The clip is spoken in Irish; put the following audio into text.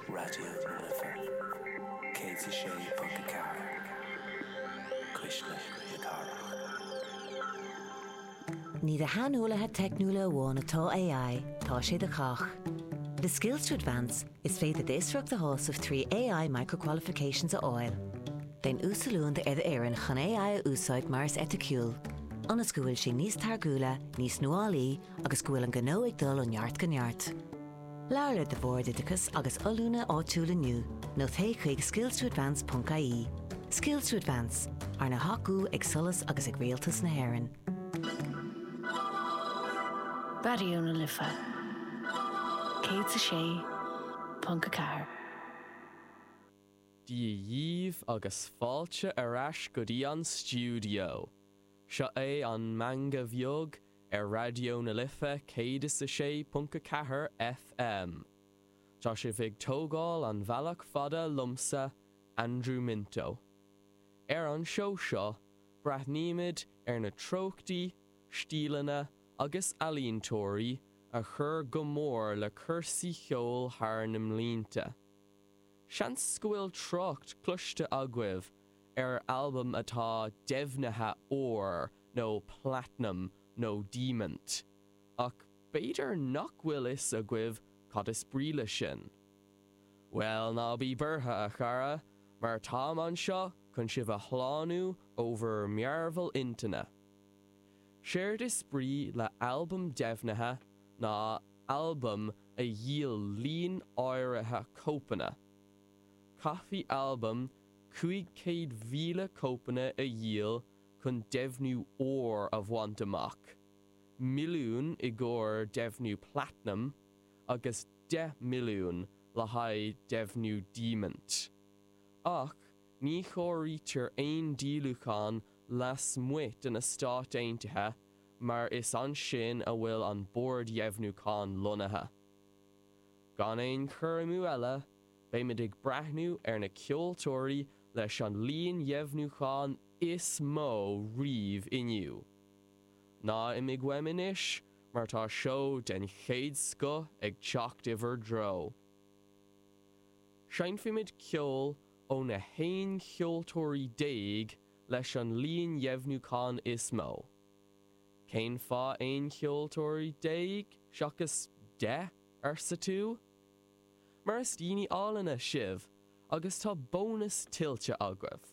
Raidió na Life 106.4, Cuisle na Cathrach. Ní do shaineolaithe teicniúla amháin atá AI, tá sé do chách. Le Skills to Advance, is féidir d'fhiosracht a shásamh trí AI Micro-Qualifications a fháil. Déan uasoiliúint ar do fhoireann chun AI a úsáid mar is eiticiúil, ionas go bhfuil sé níos táirgiúla, níos nuálaí, agus go bhfuil an gnó ag dul ó neart go neart. Labhair le do Bhord Oideachais agus Oiliúna áitiúil inniu nó téigh chuig skillstoadvance ponc ie. Skills to Advance, arna thacú ag solas agus ag Rialtas na hÉireann. Raidió na Life 106.4. Dia dhíbh agus fáilte ar ais go dtí an stiúideo! Seo é an Meangadh Beag ar Raidió na Life 106.4 FM. Tá sibh ag tógáil an bhealach fada liomsa, Andrew Minto. Ar an seó seo, breathnaímid ar na treochtaí, stíleanna agus ealaíontóirí a chur go mór le cúrsaí cheoil thar na mblianta. Seans go bhfuil trácht cloiste agaibh ar albam atá deimhnithe óir nó platanam nó diamant, ach b'fhéidir nach bhfuil fhios agaibh cad is brí leis sin. Bhuel, ná bí buartha, a chara, mar táim anseo chun sibh a shlánú ó bhur mearbhall intinne. Séard is brí le albam deimhnithe ná albam a dhíol líon áirithe cóipeanna. Caithfidh albam 500,000 cóipeanna a dhíol chun deimhniú óir a bhaint amach, milliún i gcomhair deimhniú platanam agus deich milliún le haghaidh deimhniú diamaint. Ach ní chomhairítear aon díolachán lasmuigh de na Stáit Aontaithe mar is ansin a bhfuil an Bord Deimhniúcháin lonnaithe. Gan aon chur amú eile, beimid ag breathnú ar na ceoltóirí leis an líon deimhniúchán is mó riamh inniu. Ná imigh uaim anois mar tá seó den chéad scoth ag teacht i bhur dtreo. Seinnfimid ceol ó na haon cheoltóirí déag leis an líon deimhniúchán is mó. Cén fáth aon cheoltóirí déag seachas deich, arsa tú? Mar is daoine álainne sibh agus tá bónas tuillte agaibh.